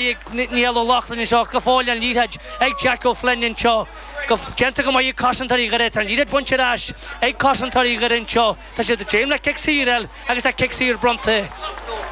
Niall Ó Lochlainn anseo, go fóill an liathróid ag Jack Ó Floinn anseo, go déanta go maith ag cosantóirí Dhoire, tá an liathróid bainte ar ais ag cosantóirí Dhoire anseo, tá siad ag dréim le cic saor eile agus tá cic saor bronnta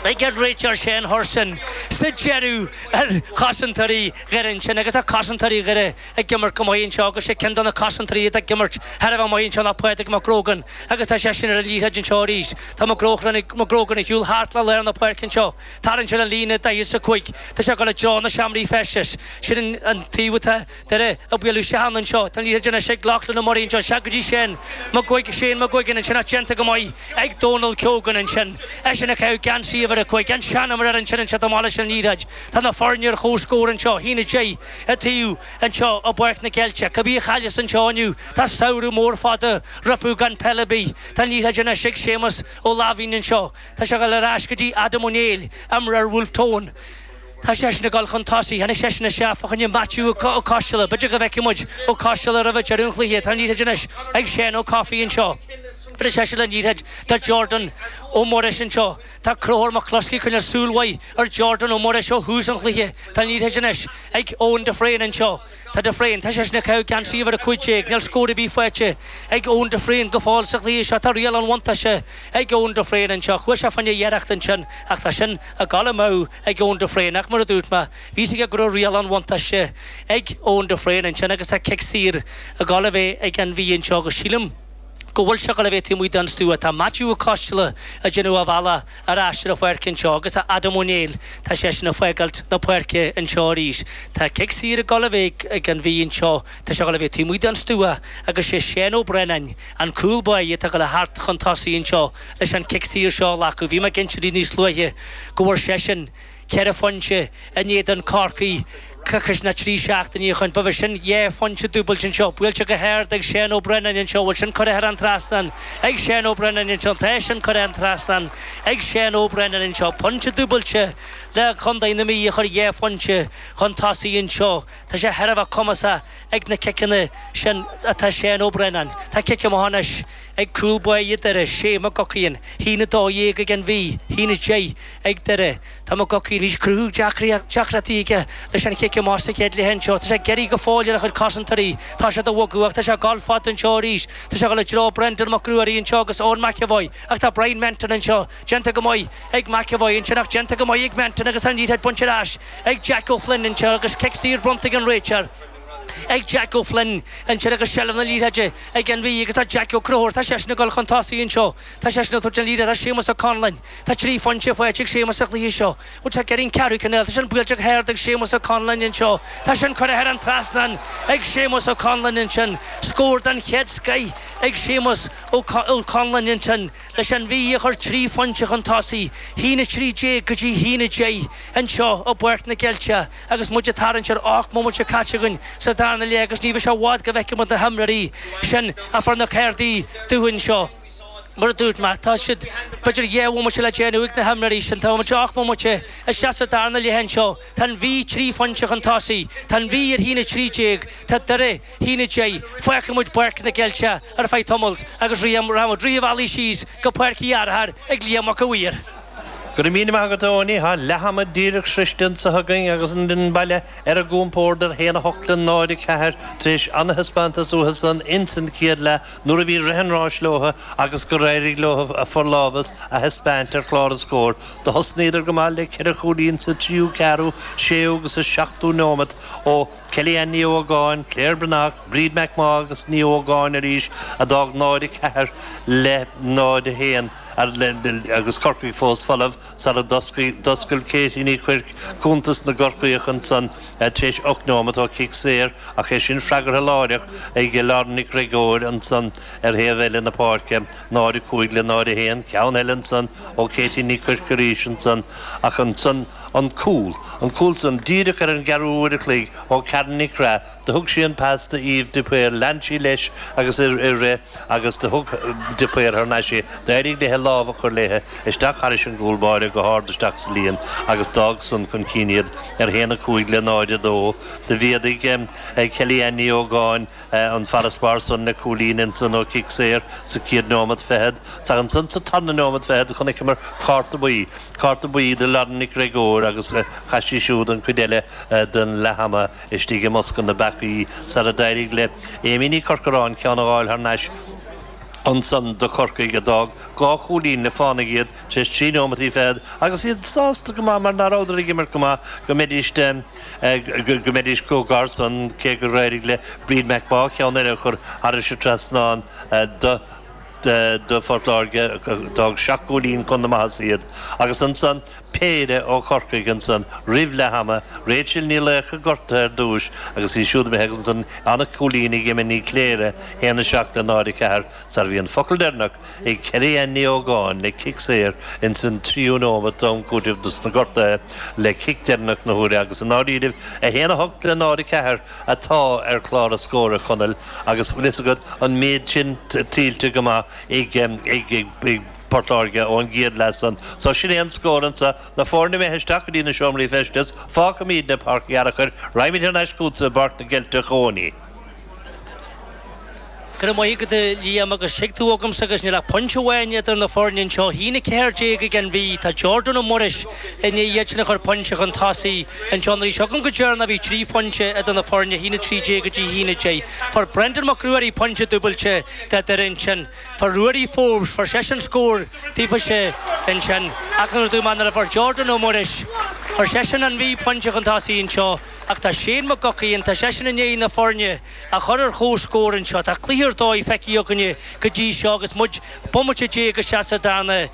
ag an réiteoir Shane Hurson sa deireadh ar chosantóirí Dhoire ansin agus tá cosantóirí Dhoire ag imirt go maith anseo agus sé ceann de na cosantóirí atá ag imirt thar a bheith maith anseo ná Pádraig Mac Grogan agus tá seisean ar an liathróid anseo arís, tá Mac Grogan ag siúl thart le lár na páirce anseo. Tharraing sé an líne daichead a cúig. Tá sé ag dul i dtreo na seomraí feistis. Sin an taobh atá Doire ag bualadh isteach ann anseo. Tá an liathróid anois ag Lochlann Ó Murraí anseo. Isteach go dtí Shane McGuig, Shane McGuigan, ansin ach déanta go maith ag Dónal Keogan ansin. Eisean ag caitheamh geansaí uimhir a cúig, an seanimreoir ansin anseo. Amach leis an liathróid. Tá na foirne ar chomhscór anseo. Haon a deich an taobh anseo i bPáirc na gCeilteach. Cibé a chailleas anseo inniu, tá samhradh mór fada rompu gan peil ar bith. Tá an liathróid anois ag Séamas Ó Laimhín anseo. Tá sé ag dul ar ais go dtí Adam Ó Néill, imreoir Bhulf Tón. Tá seisean ag dul chun tosaigh. Tháinig seisean isteach fá choinne Maitiú Ó Coistealla. B'fhéidir go bhfeicfidh muid Ó Coistealla roimh an deireadh an chluiche. Tá an liathróid anois ag Seán Ó Cofaigh anseo. Buailfidh seisean an liathróid do Jordan Ó Muiris anseo. Tá Conchúr McCluskey ag coinneáil súil mhaith ar Jordan Ó Muiris ó thús an chluiche. Tá an liathróid anois ag Eoin de Fréine anseo. Tá de Fréine, tá seisean ag caitheamh geansaí uimhir a cúig déag, níl scór ar bith faighte ag Eoin de Fréine go fóill sa chluiche seo, tá riail an bhuntáiste ag Eoin de Fréine anseo, chuaigh sé fá choinne iarracht ansin ach tá sin ag dul amú ag Eoin de Fréine ach mar a dúirt mé, bhí a fhios aige go raibh riail an bhuntáiste ag Eoin de Fréine ansin agus tá cic saor ag dul a bheith ag An Mhí anseo agus sílim go bhfuil sé ag dul a bheith taobh amuigh den stua, tá Maitiú Ó Coisteala ag déanamh a bhealach. ar ais ar an pháirc anseo agus tá Adam Ó Néill, tá seisean ag fágáilt na páirce anseo arís. Tá cic saor ag dul a bheith ag an Mhí anseo, tá sé ag dul a bheith taobh amuigh den stua agus sé Seán Ó Braonáin, an cúl báire, atá ag dul thart chun tosaigh anseo leis an cic saor seo a ghlacadh. Bhí mé ag inse daoibh níos luaithe go bhfuair seisean, Ceithre phointe in éadan Chorcaí coicís ná trí seachtainí ó shoin. B'é sin dhá phointe dúbailte anseo, buailte go hard ag Seán Ó Braonáin anseo, an bhfuil sin curtha thar an trasnán ag Seán Ó Braonáin anseo, tá sin curtha thar an trasnán ag Seán Ó Braonáin anseo. Pointe dúbailte le Contae na Mí a chuir dhá phointe chun tosaigh anseo. Tá sé thar a bheith cumasach ag na ciceanna sin atá Seán Ó Braonáin. Tá cic amach anois. ag cúl báire Dhoire, Shea McGuckin, haon a dó dhéag ag an Mhí, haon a deich ag Doire. Tá McGuckin arís ag cruthú deacrachtaí aige leis an chic amach sa chéad leath anseo. Tá sé ag iarraidh go fóill ar a chuid cosantóirí, tá siad ag bogadh ach tá sé ag dul fada anseo arís. Tá sé ag dul i dtreo Brendan Mac Ruairí anseo agus Eoin McEvoy ach tá Bryan Menton anseo. Déanta go maith ag McEvoy ansin ach déanta go maith ag Menton agus tá an liathróid bainte ar ais ag Jack Ó Floinn anseo agus cic saor bronnta ag an réiteoir. ag Jack O'Flynn ansin agus seilbh na liathróide ag an Mhí agus tá Jack Ó Conchúir, tá seisean ag dul chun tosaigh anseo, tá seisean ag tabhairt an liathróid do Séamus Ó Conlain, tá trí phointe faighte ag Séamus sa chluiche seo, bhuel tá ceithrín, ceathrú cinéal, tá sin buailte go hard ag Séamus Ó Conlain anseo, tá sin curtha thar an trasnán ag Séamus Ó Conlain ansin, scór den chéad scoith ag Séamus Ó Conlain ansin leis an Mhí a chur trí phointe chun tosaigh, haon 13 go dtí haon 10 anseo i bPáirc na gCeilteach. Agus muid ag tarraingt ar ocht mbomaite caite againn sa darna leath, agus ní bheidh sé i bhfad go bhfeicfidh muid na himreoirí sin a fuair na cárdaí dubha anseo, mar a dúirt mé, tá siad b'fhéidir dhá bhomaite le déanamh ag na himreoirí sin. Tá muid ocht mbomaite isteach sa darna leath anseo. Tá an Mhí trí phointe chun tosaigh. Tá an Mhí ar a haon 13. Tá Doire. Haon 10, fágann muid Páirc na gCeilteach ar feadh tamaill agus ritheann muid rith an bhealaigh síos go Páirc Uí Fhearchair ag Liam Mac a' Mhaoir. Go raibh míle maith agat, a Eoiní. Tá leath ama díreach sroichte anseo againn agus an fhoireann baile ar a gcompord ar haon 8 le 0-4 tar éis an-thaispeántas uathu san ins an chéad leath nuair a bhí rith an ráis leo agus gur éirigh leo a forlámhas a thaispeáint ar chlár an scóir. Do thosnaíodar go maith le ceithre chúilín sa tríú, ceathrú, séú agus sa seachtú neomat ó Kellyanne Ní Ógáin, Claire Breathnach, Bríd McMaugh agus Ní Ógáin arís a d'fhág 0, 4 le 0, 1 agus Corcaigh fós folamh sara d'oscail Katie Ní Chuirc cuntas na gCorcaíoch ansan tar éis ocht nóimeat ó chic saor ach é sin freagartha láithreach ag Lauren Nic Gregóir ansan ar thaobh eile na páirce, 0, 5 le 0, 1. Ceann eile ansan ó Katie Ní Chuirc arís ansan ach ansan. an cúl, an cúl san, díreach ar an gceathrú uair a chloig ó Karen Nic Craith, do thug sí an pas do Eve de Paor, lean sí leis agus í ag rith agus do thug de Paor thar n-ais é, d'éirigh léithe lámh a chur léithe isteach thairis an gcúl báire go hard isteach sa líon agus d'fhág san chun cinn iad ar haon a cúig le 0, 2. Do mhéadaigh Kelly-Anne Ní Ógáin. an farasbarr san le cúilín ansan ó chic saor sa chéad nóimeat fichead. Is ansan sa tarna nóimeat fichead a chonaiceamar cárta buí, cárta buí do Lauren Nic Gregóir agus chaith sí siúd an chuid eile den leathama istigh i mbosca na bpeacaí sar a d'éirigh le Amy Ní Corcoráin ceann a ghabháil thar n-ais ansan do Chorcaigh a d'fhág dhá chúilín le fánaigh iad tar éis trí nóimeataí fichead agus iad sásta go maith mar ná rabhadar ag imirt go maith go mbeidís go mbeidís chomh gar san cé gur éirigh le Bríd McMaugh ceann eile a chur thar an trasnán do Phort Láirge. D'fhág seacht gcúilín chun na maitheasa iad agus ansan péire ó Chorcaigh ansan roimh leath ama, Rachel Ní Laocha gortaithe ar dtúis agus í siúd imithe agus ansan an cúilín ag Emma Ní Chléire, 1-7 le 0-4 sar. Bhí an focal deireanach Ag Keri Ann Ní Ógáin le cic saor ins an tríú nóimeat d'am cúitimh dos na gortuithe le cic deireanach na huaire agus i ndáiríribh 1, 8 le 0, 4 atá ar chlár na scór a Chonaill agus tá fhios agat an méid sin tuillte go maith ag Port Láirge ón gcéad leath san. So sin é an scór ansan na foirne imithe isteach go dtí na seomraí feistis, fágfaimídne Páirc an Fhearchair, raghaimid thar n-ais chugatsa i bPáirc na gCeilteach Eoin. Cuir amuigh agat é, Liam, agus suigh tú agamsa agus níl ach pointe amháin idir na foirne anseo. A haon a ceathair déag ag An Mhí. Tá Jordan Ó Muiris i ndiaidh iad sin a chur pointe chun tosaigh. Anseo an aois agam go deireanach bhí trí phointe idir na foirne, a haon a trí déag go dtí a haon a deich. Fuair Brendan Mac Ruairí pointe dúbailte do Dhoire ansin. Fuair Ruairí Forbes, fuair seisean scór daofa-se ansin. Ach nuair a d'fhan mar a fuair Jordan Ó Muiris, fuair seisean, An Mhí, pointe chun tosaigh anseo. Ach tá Shane McGuigan, tá seisean i ndiaidh na foirne a chur ar chomhscór anseo. Tá cluiche ar dóigh feicthe againne go dtí seo agus muid bomaite déag isteach sa darna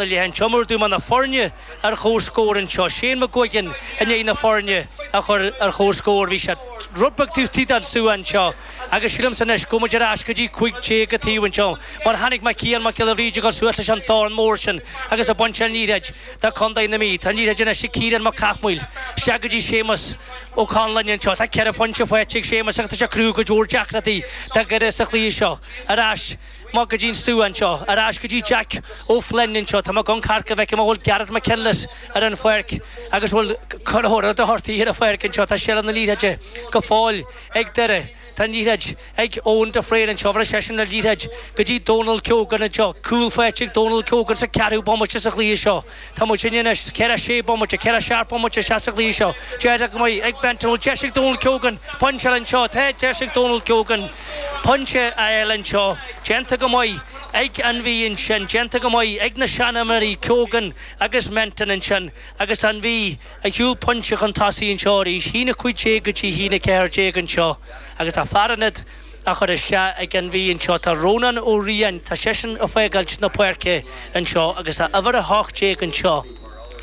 leath anseo. Mar a dúirt mé na foirne ar chomhscór anseo. Shane McGuigan i ndiaidh na foirne a chur ar chomhscór. Bhí sé rud beag taobh istigh den stua anseo agus sílimse anois go bhfuil muid ar ais go dtí cúig déag an taobh anseo mar tháinig Cian Mac Giolla Bhríde suas leis an dorn mór sin agus ag baint an liathróid de Chondae na Mí. Tá an liathróid anois ag Ciarán Mac Cathmhaoil, isteach go dtí Séamas Ó Conláin anseo. Tá ceithre phointe faighte ag Séamas agus tá sé ag cruthú go leor deacrachtaí do Dhoire sa chluiche seo. Ar ais amach go dtí an stua anseo. Ar ais go dtí Jeaic Ó Floinn anseo. Tá mé ag amharc a bhfeicim an bhfuil Gareth McKinless ar an pháirc agus an bhfuil Conor Doherty ar an pháirc anseo. Tá seilbh na liathróide go fóill ag Doire. Tá an liathróid ag Eoin de Fréin anseo agus seisean an liathróid go dtí Donal Keogan anseo. Cúl faighte ag Donal Keogan sa ceathrú bomaite sa chluiche seo. Tá muidne anois, daichead a sé bomaite, daichead a seacht bomaite isteach sa chluiche seo. Déanta go maith ag Ben Tyrrell, deis ag Donal Keogan, pointe eile anseo, tá deis ag Donal Keogan, pointe eile anseo, déanta go maith ag an Mhí ansin, déanta go maith ag na seanfhondúirí Keogan agus Menton ansin agus an Mhí. ag gabháil pointe chun tosaigh anseo arís, a haon a cúig déag go dtí a haon a ceathair déag anseo, agus tá fear ionaid á chur isteach ag an Mhí anseo, tá Rónán Ó Riain, tá seisean ag fágáil na páirce anseo, agus tá uimhir a hocht déag anseo,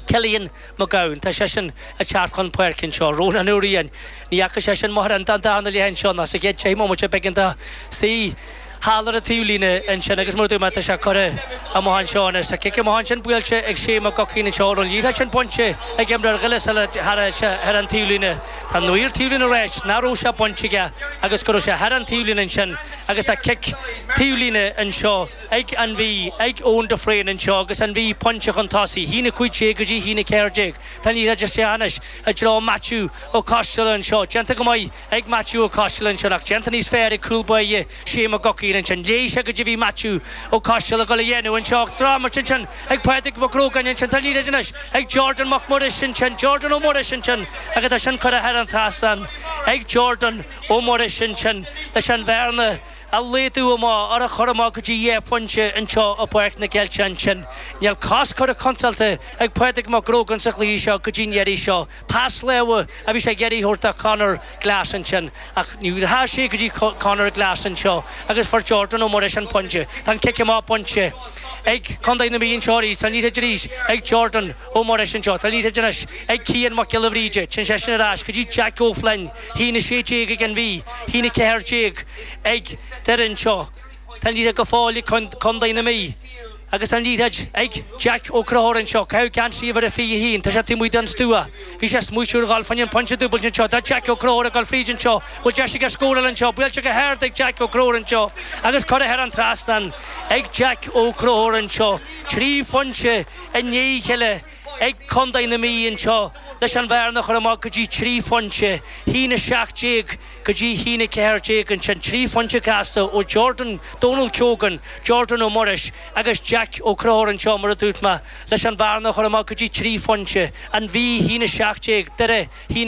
Cillian Mac Gabhann, tá seisean ag teacht chun páirce anseo, Rónán Ó Riain, ní fhaca seisean mórán den darna leath anseo ná sa chéad deich mbomaite beagán dá suí. thall ar an taobh líne ansin agus mar a dúirt mé, tá sé curtha amach anseo anois. Tá cic amach ansin buailte ag Shane McGuckian anseo an raibh an liathróid sin bainte ag imreoir Ghillis eile thar an taobh líne. Tá an maor taobh líne ag ráit nach raibh sé bainte aige agus go raibh sé thar an taobh líne ansin agus tá cic taobh líne anseo ag an Mhí, ag Eoin de Fréin anseo agus an Mhí pointe chun tosaigh, a haon a 15 go dtí a haon a 14. Tá an liathróid isteach anois i dtreo Maitiú Ó Coisteala anseo, déanta go maith ag Maitiú Ó Coisteala ansin, ach déanta níos fearr ag cúl báire Shea McGuckin ansin. Léigh sé caidé a bhí Maitiú Ó Coisteala ag dhul a dhéanamh anseo, ach drochimirt ansin ag Pádraig Mac Grógáin ansin. Tá an liathróid anois ag Jordan Mac Muiris ansin, Jordan Ó Muiris ansin agus tá sin curtha thar an trasnán ag Jordan Ó Muiris ansin leis an bhearna a laghdú amach, ar a chur amach go dtí dhá phointe anseo i bPáirc na gCeilteach ansin. Níl cos curtha contráilte ag Pádraig Mac Grógáin sa chluiche seo go dtí an iarraidh seo. Pas láimhe a bhí sé ag iarraidh a thabhairt do Conor Glass ansin ach ní dheachaidh sé go dtí Conor Glass anseo agus fuair Jordan Ó Muiris an pointe. Tá an cic amach bainte ag Contae na Mí anseo arís. Tá an liathróid anois ag Jordan Ó Muiris anseo. Tá an liathróid anois ag Cian Mac Giolla Bhríde. Téann seisean ar ais go dtí Jeaic Ó Floinn. A haon a 16 ag an Mhí. A haon a 14 ag Doire anseo. Tá an liathróid go fóill ag Contae na Mí agus tá an liathróid ag Jack Ó Conchúir anseo ag caitheamh geansaí uimhir a 21. Tá sé taobh amuigh den stua. Bhí sé ag smaoitiú ar dhul fá choinne an pointe dúbailte anseo. Tá Jack Ó Conchúir ag dhul fríd anseo. Bhfuil deis aige scóráil anseo? Buailte go hard ag Jack Ó Conchúir anseo agus curtha thar an trasnán ag Jack Ó Conchúir anseo. Trí phointe i ndiaidh a chéile. ag Contae na Mí anseo leis an bhearna a chur amach go dtí trí phointe, a haon a 17 go dtí a haon a 14, ansin trí phointe gasta ó Jordan, Donal Keogan, Jordan Ó Muiris agus Jeaic Ó Conchúir anseo, mar a dúirt mé, leis an bhearna a chur amach go dtí trí phointe, An Mhí, a haon a 17, Doire, a haon.